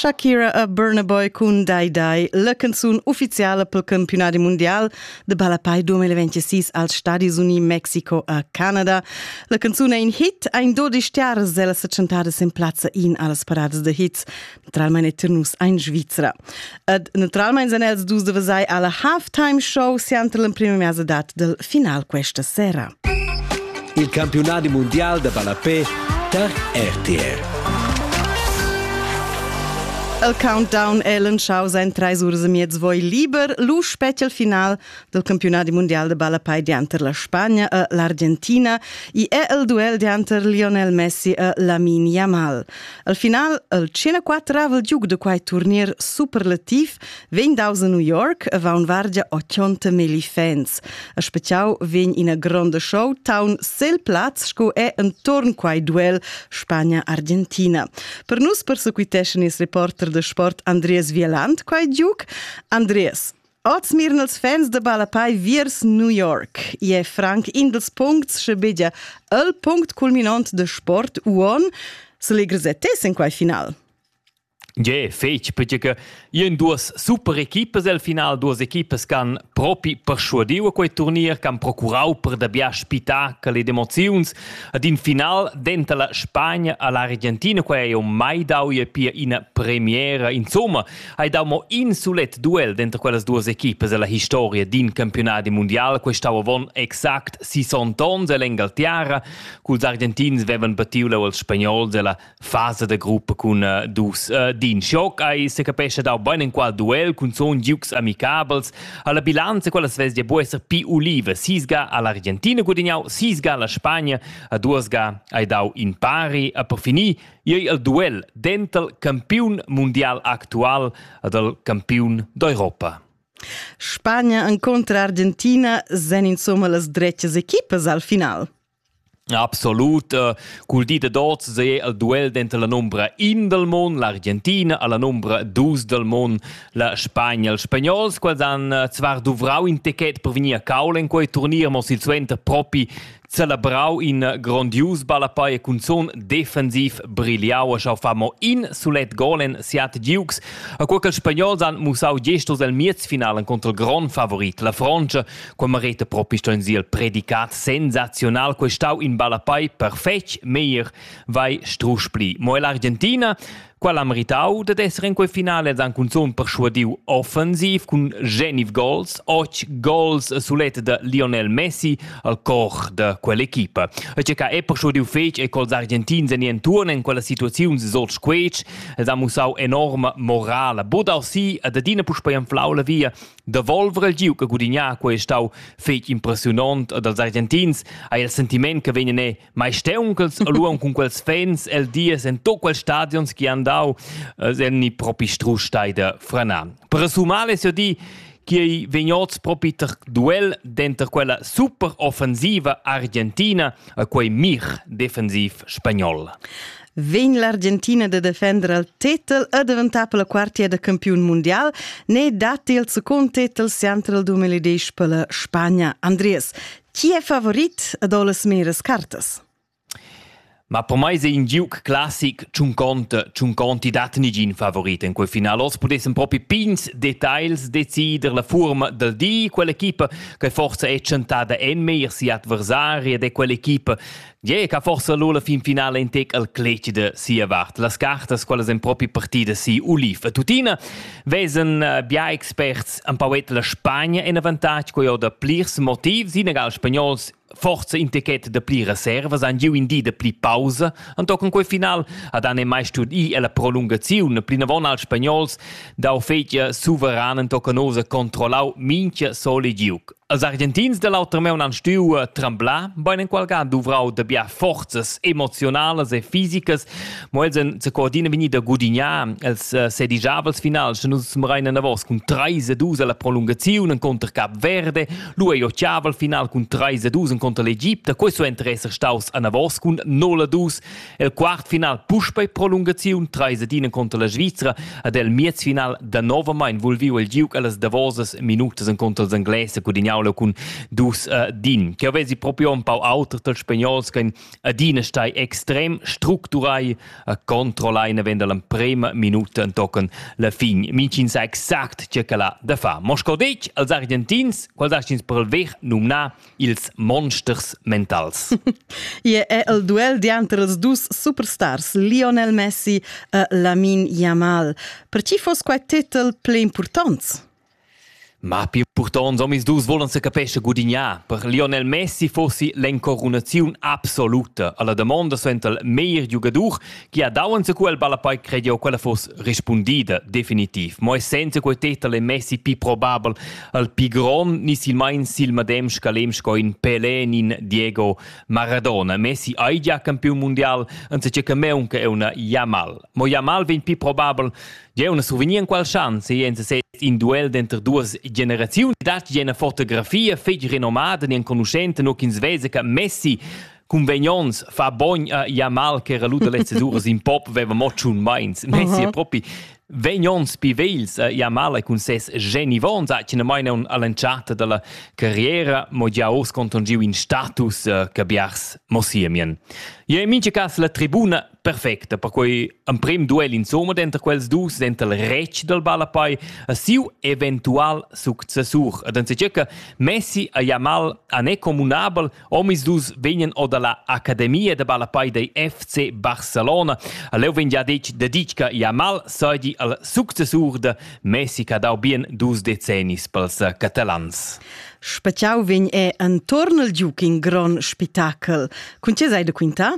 Shakira a Burna Boy cun Dai Dai, la canzun ufficiala pel campionat mundial de ballapai 2026 als Stadis Uni, Mexiko a Canada. La canzun è in hit, ein dodisch stars, ella se chantadas in plazza in allas parades de hits. Naturalmein è nus ein Svizra. Ed naturalmein san els dus de vesai alla halftime show sianter l'emprima mesadat del final questa sera. Il campionati mondial da ballapé tar RTR. El countdown Ellen Schau sein treis ures e miez voi liber, lu spetg il final dal campiunadi mundial da ballapei dianter la Spagna e l'Argentina i è il duel dianter Lionel Messi e Lamin Yamal. Al final, il 104-avel giug da quai turnier superlativ vegn daus a New York e va un vargia 80 milli fans. A speciau vegn ina gronda show town sel plaz sco è entorn quai duel Spagna-Argentina. Per nus persequiteschan ils reporter de sport Andreas Vieland quai giug. Andreas, Oz miren els fans de Balapai viers New York. I è franc in dels puncts che bedia el punct culminant de sport uon se legresettes in quai final. Je, fetg, perché che io in duas super equipes al final, duas equipes che han propi persuadiu a quei turnier, che han procurau per dabia spettacoli ed emoziuns ad in final dentro la Spagna all'Argentina, quei hai mai dau je pia ina premiera, insomma, hai dau mo in sulet duel denter quellas duas equipas ella historia d'in campiunadi mundial. Questau avon exact 60 onns ell'Engaltiara, culs argentins vevan patiu leu als spagnols ella fasa de gruppa cun uh, dus uh, d'in schoc. Ei se capescha dau bein enqual duel cun zon giugs amicabels. Alla bilanza quellas vesdia buca esser pi ulive. Sisga all'Argentina gudignau, sisga alla Spagna, a duas ga hai dau in pari. A per finir ei el duel dental campiun mundial actual ed el campiun d'Europa. Spagna encontra Argentina sen insomma las dretgas equipas al final. Absolut, uh, cul di de dots se el duel denter la nombra in del mon, l'Argentina, alla nombra dus del mon, la Spagna, els spagnols, quals han uh, zvar duvrau in techet per venir a caul in quei turnier, mo silsuenter propi celebrau in grondius ballapei e cunzun defensiv brigliau e schau fa mo in sulet gol en siat Dukes. A quei ch'ils spagnols han mussau gest oz el miezfinalen contro il grond favorit, la Fronte, quei mereta propi sto in siel predicat sensazional, quei stau in ballapei perfetg, meglier vai strusch pli. Mo l'argentina Quel ha meritau dad esser in quei finale ed han cunzun perschuadiu offensiv cun Geniv gols, otg gols sulet da Lionel Messi al cor da quell'equipa. E che ca è perschuadiu fetg e col argentins en entuorn en quella situaziun sot squetsch ed ha mussau enorma morala. Bodarsi ad adina puspei anflau la via da volver il giu che gudigna quei stau fetg impressionant dals argentins ha il sentiment che vegnan maisteunchels aluon cun quels fans el dies en to quels stadions chi han dau äh, sen ni propi strusch da frana. Per sumar es ja di chi ei vegnots propi ter duel denter quella super offensiva argentina e quei mir defensiv spagnol. Vegn l'Argentina de defender al titel e diventar per la quartia de campion mondial, ne datti il secund titel sempre il 2010 per la Spagna. Andries, Chi è favorit ad las meras cartas? Ma per mai è in giuc classic ch'un conta, ch'un conti dat nigin favorit in quel final. Oz pudessan propi pigns details decider la furma dal di. Quell'equipa che forsa è tschentada en meir si adversari ed è quell'equipa Gie, che forsa lu la fin finala in tec al cleci de sia vart. Las cartas, quelles en propi partida si Ulif e tuttina, vesen eh, bia experts an pauet la Spagna en avantatg co jo da plirs motivs, inegal spagnols forza in ticket de pli reservas an giu in di de pli pausa an tochen quei final ad an e mai stud i e la prolungaziun plinavon als spagnols da fetja suveran toccanosa controllau minchia sole giuc Els Argentins da l'auter maun han stuiu tremblar, bein enqualga duvrau da bia forzas emoziunalas e fisicas, mo els en coordina vegni da gudignar els eh, sedigiavels finals, sche nus smerein enavos cun 3 2 alla prolungaziun encontr Cap Verde, lu ei occhiavel final cun 3 2 encontr l'Egipte, questo enter esser staus anavos cun 0 2 El quart final puspei prolungaziun treis ed ina contra la Svizra ed el miez final danovamein vulviu il giug allas davosas minutas encontro els Engles e Cudignau cun dus uh, din. Che vesi proprio un pau auter dal spagnols che adina stai extrem structurai a controllare venda l'emprema minuta tochen la fin. Mincin sa exact ce che la da fa. Moscovich als argentins, quals astins per il vech numna ils monsters mentals. Ie è el duel dianter els dus superstars, Lionel Messi e Lamin Yamal. Per chi fos quai titel ple importants? Ma più purtons omis dus volan se capesce gudignar. Per Lionel Messi fossi l'encorunaziun absoluta. Alla damonda suental meir giugadur Gia dauens quel ballapei crediu quella fuss rispundida definitiv, mo senza quei tetel è messi pi probabel al pi gron ni silmein sil madem scalem sco in Pelé ni in Diego Maradona. Messi ei gia campiun mundial, anziché che meunca è una Jamal. Mo Jamal vegn pi probabel Jeu una souvenir in qual chance e en se in duel denter duas generazioni dat je una fotografia fetg renomada ni enconuschente no ch'ins vese che Messi Convenients fa bogn a ja mal che era lu dalle ceduras in pop veva mo tschun meins. Messi uh propi Venions pivels eh, ja male cun ses genivon sa china mai non all'entschatta dalla carriera mo gia urs contongiu in status eh, che biars mossiemien. Je in mince cas la tribuna perfecta per quei emprim duel insomma denter quels dus denter il rec del ballapai a siu eventual successur ed en seccirca Messi a ja mal a ne comunabel Omisdus vegnan or dalla Academia da ballapei dei FC Barcelona. Leu vegn gia detg deditg che Jamal seigi al successur de Messi che ha dau bien dus decennis pels catalans. Speciau vegn è entorn il giug in gron spitachel. Cun tge sei de quintar?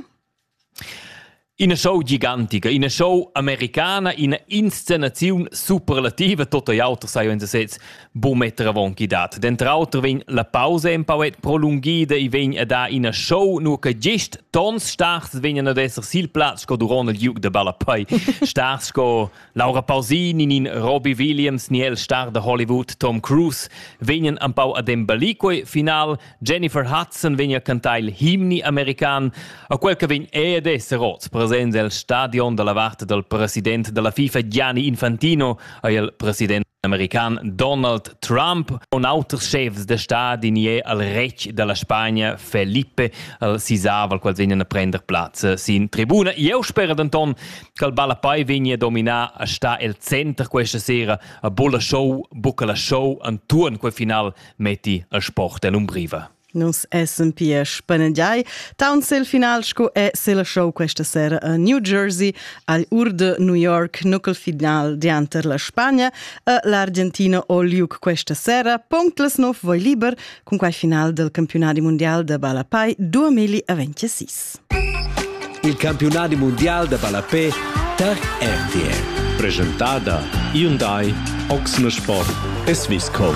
Ina show gigantica, ina show americana, ina inscenaziun superlativa, tot ei auter sai uns sez bu metter avon chi dat. Denter auter vegn la pausa empau et prolunghida e vegn a dar ina show, nur che gest tons stars vegnan ad esser sil plaz sco duront il giug de ballapei. stars sco Laura Pausini, nin Robbie Williams, ni el star de Hollywood Tom Cruise vegnan empau ad embellir quei final Jennifer Hudson vegn a cantar il himni american, a quel che vegn ed esser oz presents el stadion dalla vart dal president dalla FIFA Gianni Infantino e il president american Donald Trump und auters chefs de stadi nie al retg dalla Spagna Felipe al sisaval quals vegnan a prender plaz sin tribuna. Eu spera denton che il Ballapai vegna dominar a sta el center questa sera a Bulla Show, buca la show antuorn quel final metti a sport en umbriva. Nus essem pia spanegiai taunt sil final sco è sil show questa sera a New Jersey al Urde New York nucl final dianter la Spagna e l'Argentina o Liuc questa sera punct las 9 voi liber cun quai final del campionati mondial da balla pai 2026. Il campiunadi mundial da ballapè tar RTL. Presentada Hyundai Oxne Sport e Swisscom.